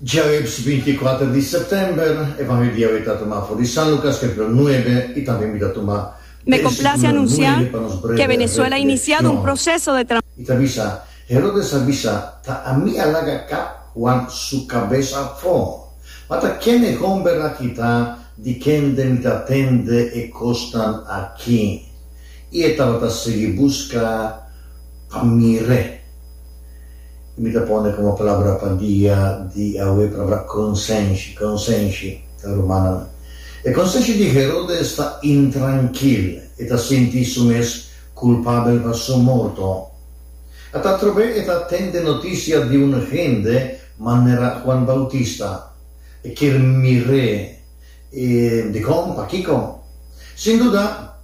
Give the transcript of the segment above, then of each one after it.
Djaweps binti i kuater di sèptèmber, e van hoi di awe ta tuma afó di San Lukas, templo nuebe, i tambe mi ta tuma Me complace anuncia que Venezuela iniciado un proceso de. I ta bisa, Herodes a bisa, Ta ami a laga kap Huan su kabes afó. Ma ta ken e homber aki ta di kende mi ta tende e kosnan aki? I e tabata sigui buska. Pa mir'é. I mi ta pone komo palabra pa dia di awe palabra konsenshi. Konsenshi ta rumana nan. E konsenshi di Herodes ta intrankil. E ta sinti su mes kulpabel pa su morto. Ata atrobe e ta tende notisia di un hende manera Juan Bautista. E kier mir'é. I dikon? Pakiko? Sin duda,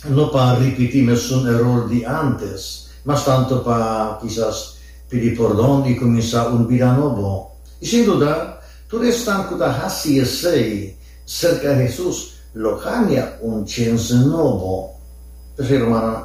no pa ripití mesun eror di ántes, mas tantu pa kisas pidi pordon i kuminsá un bida nobo. I sin duda, tur esnan ku ta hasi esei serka Hesus lo haña un chense nobo. P'esei, rumannan,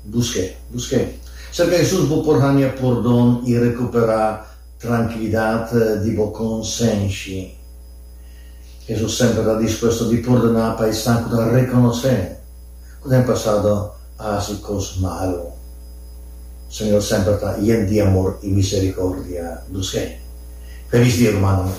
busk'é. Busk'é serka Hesus, bo por haña pordon i rekuperá Trankilidat di bo konsenshi. Hesus semper ta dispuesto di pordoná pa esnan ku ta rekonosé ku den pasado a hasi kos malu. Señor semper ta yen di amor i miserikordia. Dushe. Felis dia, rumannan!